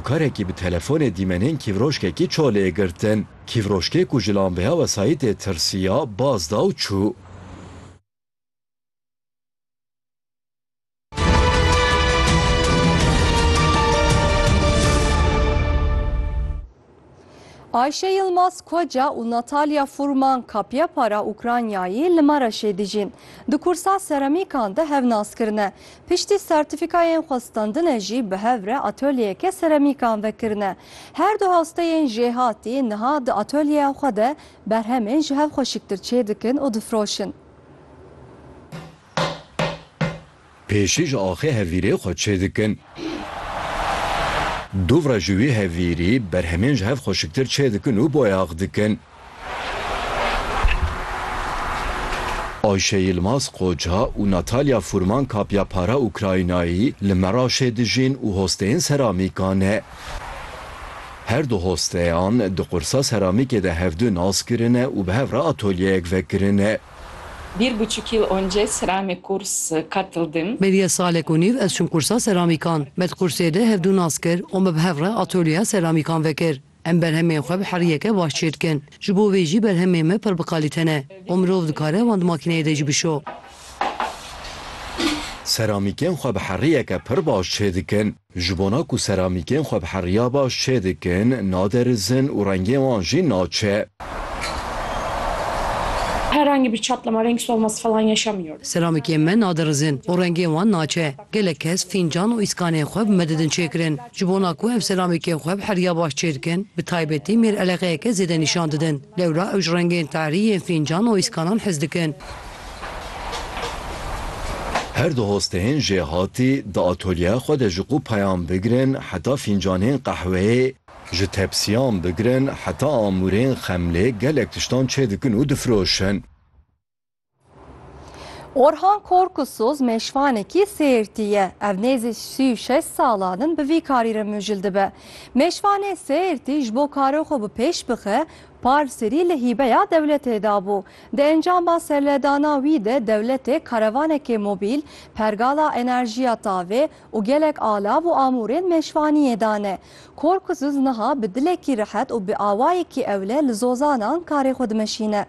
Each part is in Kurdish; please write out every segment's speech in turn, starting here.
Karekî bi telefonê dîmenên kîvroşkekî çolê girtin. Kîvroşkê ku ji lambeya wesayîtê tirsiya, baz da û çû. Ayşe Yilmaz Koca û Natalya Furman Kapya Para Ukraynayê li Mereşê dijîn. Di kursa seramîkan de hev nas kirine. Piştî sertîfîkayên xwestandine jî bi hev re atolyeyeke seramîkan vekirine. Her du hasteyên jêhatî niha di atolyeya xwe de berhemên ji hev xweşiktir çêdikin û difiroşin. Pêşî ji axê hevîrê xwe çêdikin. Dûvre ji wî hevîrî berhemên ji hev xweşiktir çêdikin û boyax dikin. Ayşe Yilmaz Qoca û Natalya Furman Kapya Para Ukraynayî li Meraşê dijîn û hosteyên seramîka ne. Her du hosteyan di qursa seramîkê de hevdu nas kirine û bi hev re atolyeyek vekirine. Bir buçuk yıl önce serame kurs katıldım. Beriye salek û nîv ez çûm kursa seramîkan. Me di kursê de hevdu nas kir û me bi hev re atolyeya seramîkan vekir. Em berhemên xwe bi heriyeke baş çê dikin. Ji bo vê jî berhemên me pir bi kalîte ne û mirov dikare wan di makîneyê de jî bişo. Seramîkên xwe bi heriyeke pir baş çê dikin. Ji bona ku seramîkên xwe bi heriya baş çê dikin, naderizin û rengên wan jî naçe. Herhangi bir çatlama renk solması falan yaşamıyorum. Seramîkên me naderizin û rengên wan naçe. Gelek kes fîncan û îskanên xwe bi me didin çêkirin. Ji bona ku ev seramîkên xwe bi heriya baş çê dikin, bi taybetî mêr eleqeyeke zêde nîşan didin. Lewra ew ji rengên tarî yên fîncan û îskanan hez dikin. Her du hosteyên jêhatî di atolyeya xwe de ji qû peyan bigirin heta fîncanên qehweyê, ji tepsiyan bigirin heta amûrên xemlê gelek tiştan çêdikin û difiroşin. Orhan Korkusuz mêşvanekî Sêrtî ye. Ev nêzî sî û şeş salan in bi vî karî re mijil dibe. Mêşvanê Sêrtî ji bo karê xwe bi pêş bixe, parsêrî li hîbeya dewletê dabû. Di encama serledana wî de dewletê karevanekê mobîl, pergala enerjiya tavê û gelek alav û amûrên mêşvaniyê dane. Korkuzuz niha bi dilekî rehet û bi awayekî ewle li zozanan karê xwe dimeşîne.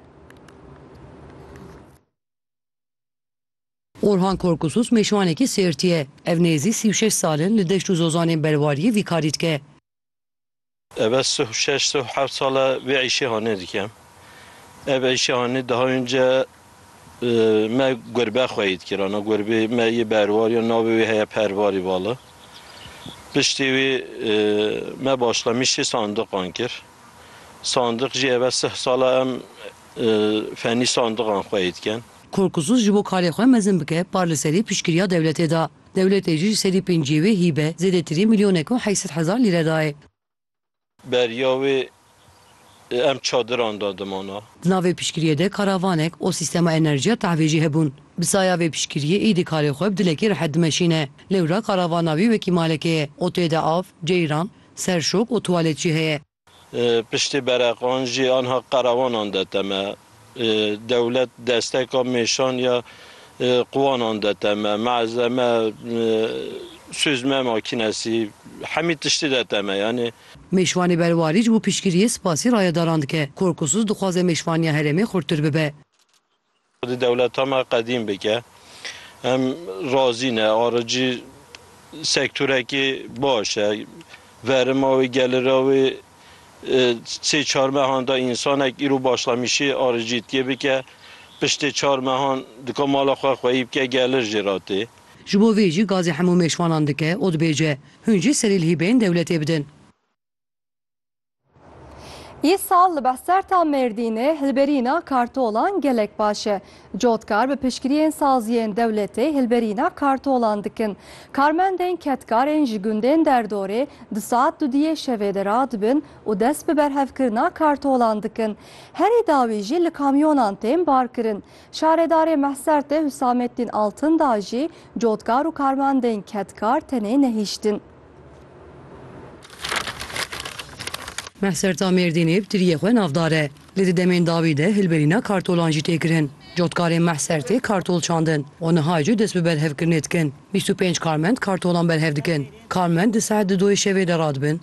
Orhan Korkuzuz mêşvanekî Sêrtî ye. Ev nêzî sî û şeş sal in li deşt û zozanên Berwariyê vî karî dike. Ev ez sih û şeş sih û heft sal e vê îşê hanê dikim. Ev îşê hanê daha önce me gurbe xwe yê dikir ana gurbê me yê berwar ya navê wê heye Pervarî Vali. Piştî wî me başlamişî sandiqan kir. Sandiq jî ev ez sih sal e em fenî sandiqan xwe yê dikin. Korkûsuz ji bo karê xwe mezin bike par li serî piştgiriya dewletê da. Dewletê jî ji sedî pêncîyê wê hîbe zêdetirî milyonek û heşt sed hezar lîre dayê. Beriya wê em çadiran de dimana. Di nav vê piştgiriyê de karavanek û sîstema enerjiya tehvê jî hebûn. Bi saya vê piştgiriyê êdî karê xwe bi dilekî rehet dimeşîne. Lewra karavana wî wekî malekê ye û tê de av, ceyran, serşok û tuwalet jî heye. Piştî bereqan jî anha qerewanan de teme. Dewlet desteka mêşan ya quwanan de teme. Malzeme, suzme makînesî hemî tiştî de teme yanî. Mêşvanê berwarî ji bo piştgiriyê spasî rayedaran dike. Korkusuz dixwaze mêşvaniya herêmê xurttir bibe. Xwedî dewleta me qedîm bike. Em razî ne. Aricî sektorekî baş e. Verima wê, gelira wê sê çar mehan da însanek îro başlamişî aricîtkê bike. Piştê çar mehan dika mala xwe xweyî bike gelir jê ra tê. Ji bo vê jî gazê hemû mêşvanan dike û dibêje, Hûn jî serîlhî bên dewletê bidin. Yê sal li Behserta Mêrdînê hilberîna kartolan gelek baş e. Cotkar bi piştgiriyên saziyên dewletê hilberîna kartolan dikin. Karmendên kedkarên ji gundên derdorê di saet dudiyê şevê de radibin û dest bi berhevkirina kartolan dikin. Herî dawî jî li kamyonan tên barkirin. Şaredarê Mehsertê Husameddîn Altindağ jî cotkar û karmendên kedkar tenê nehiştin. Mehserta Mêrdînê bi tiriyê xwe navdar e. Lê di demên dawî de hilberîna kartolan jî tê kirin. Cotkarên Mehsertê kartol çandin û niha jî dest bi berhevkirinê dikin. Bîst û pênc karmend kartolan berhev dikin. Karmend di saet di doyê şevê de radibin.